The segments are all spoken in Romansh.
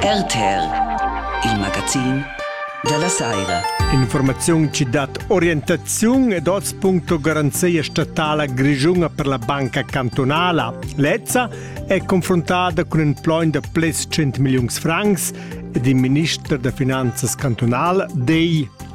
RTL, il magazin della Saira. Informaziun ci dat orientaziun ed oz.ro garanzia statala grigiuna per la banca cantonala. Lezza è confrontata con in plogn da plus 100 millions francs ed il minister da finanzas cantonal dei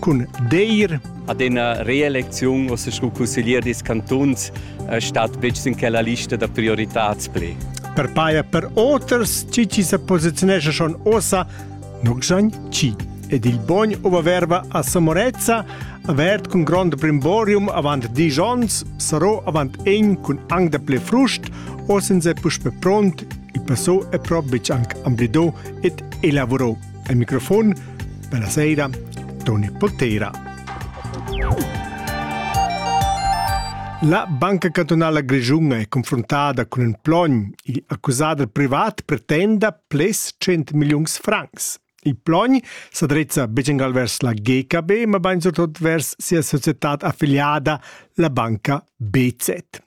cun deir ad ina reelecziun o scu consiglier dis cantuns eh, stat betg in quella lista da prioritats pli. Per paia per oters ci ci se posizionesce schon osa nunc san ci ed il bogn ova verba a Samorezza avert cun grond brimborium avant dies ons sarò avant en cun ang da ple frust o sen se puspe pront il passo è probic anc amblido et elavorò Al microfon bella sera Toni Potera. La Banca Cantonala Grischunga è confrontada cun un plogn. Il accusader privat pretenda plus 100 millions francs. Il plogn sa drizza begengal vers la GKB, ma bain surtut vers sia società affiliada, la banca BZ.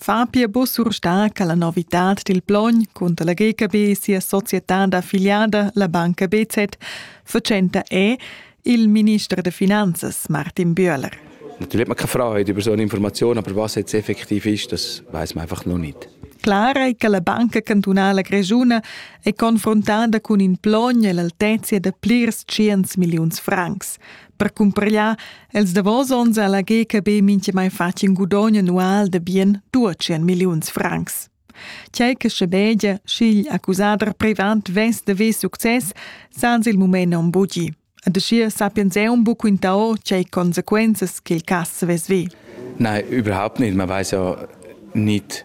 Fa pia buc surstar che la novitad dil plogn cunter la GKB sia società d'affiliada, la banca BZ, fatschenta è il minister da finanzas Martin Bühler. Natürlich hat man keine Freude über so eine Information, aber was jetzt effektiv ist, das weiß man einfach noch nicht. Klar è che la Banca cantunala grischuna è confrontada cun in plogn e l'altezia da plirs tschients milliuns francs. per cumpragliar els davos onns a la GKB mintgamai fatg in gudogn annual de bien 200 milliuns francs. Tgei che schebegia, sch'igl accusader privant vess de ver success sans il mument non bugi. Ad schier sapiens eun buc quintao tgei consequenzas che il cass vess ve. Nein, überhaupt nicht. Man weiß ja nicht,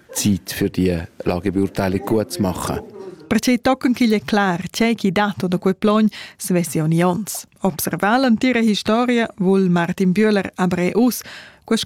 Zeit für die Lagebeurteile gut zu machen. Perciò tochen ch'igl è clar, tgei ch'i dat da quei plogn, svessi ogni ons. Observar l'entira historia vul Martin Bühler aber uss, quest